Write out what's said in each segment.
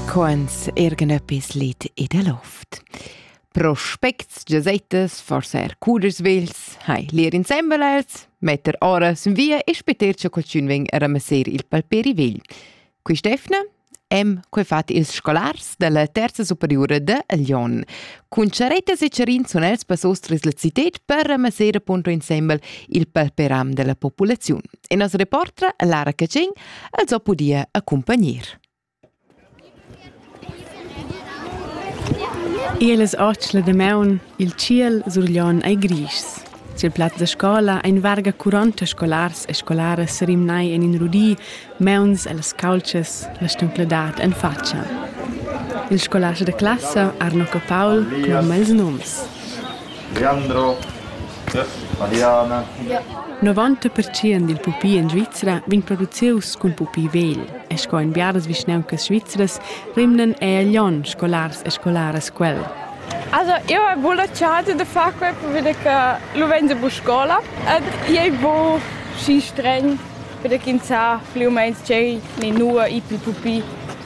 Quants ergnöppis lit ed a loft. Prospects, gesettas, forsa er cuders vels, hai lir insembel els, metter ora sun via e speter cha qualchün vegn a ramasser il palperi vegl. Quist'efna hem quei fat ils scolars dalla terza superiura de Lyon. Cun charettas e charin sun els passos tras la cited per ramasser appunto insembel il palperam della populaziun. In as reportra Lara Catschin els ho pudia accumpagner. Elas otschla de maun, il ciel surglion ei gris. Sil plaz da scola ein varga 40 scolars e scolaras serimnai en in rudi, meuns ellas calces, la stumcladat en faccia. Il scolars de classa Arno Capaul cloma ils noms. Leandro, Mariana. Novanta pertschient dil pupi en Svizra vegn producius cun pupi vegl e sco en biaras vischnauncas svizras rimnan ei a Glion scolars e scolaras quel. Also, eu hai buca la chance de far quei perché che lu vegn bu scola ed ei bu schi stregn perché ins sa pli u meins tgei ni nua i pil pupi.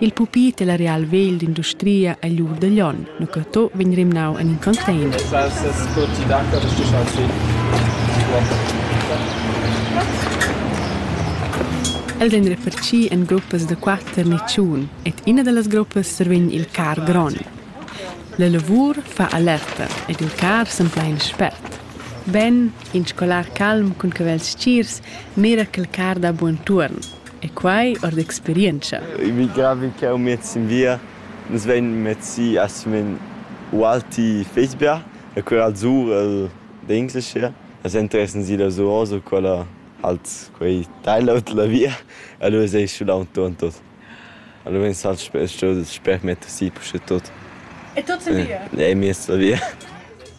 Il pupi della real vegl d'industria egl ur da Glion, Nucato, vegn rimnau en in container. sco ti daca de stischar si. Els ein referci en gruppas da quater ni tschun ed ina dallas gruppas survegn il car gron. La lavur fa alerta ed il car sempla in spert. Ben, in scolar calm cun cavels stgirs mira quel car da buon tuorn. E quai ord experientscha. Emigravi ch'jau met sin via. Nus vein mez si a Simen Ualti Fezberg, e quella al sur el d'Englischer. Las interessan si da Zuozo, quella halt quei teil out la via. Allora sei schulau ton tot. Allora vegn sal sper metter si pusche tot. E tot sin via? E mi la via.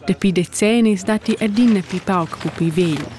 Dapi decennis datti adina pi pauc pupi vegl.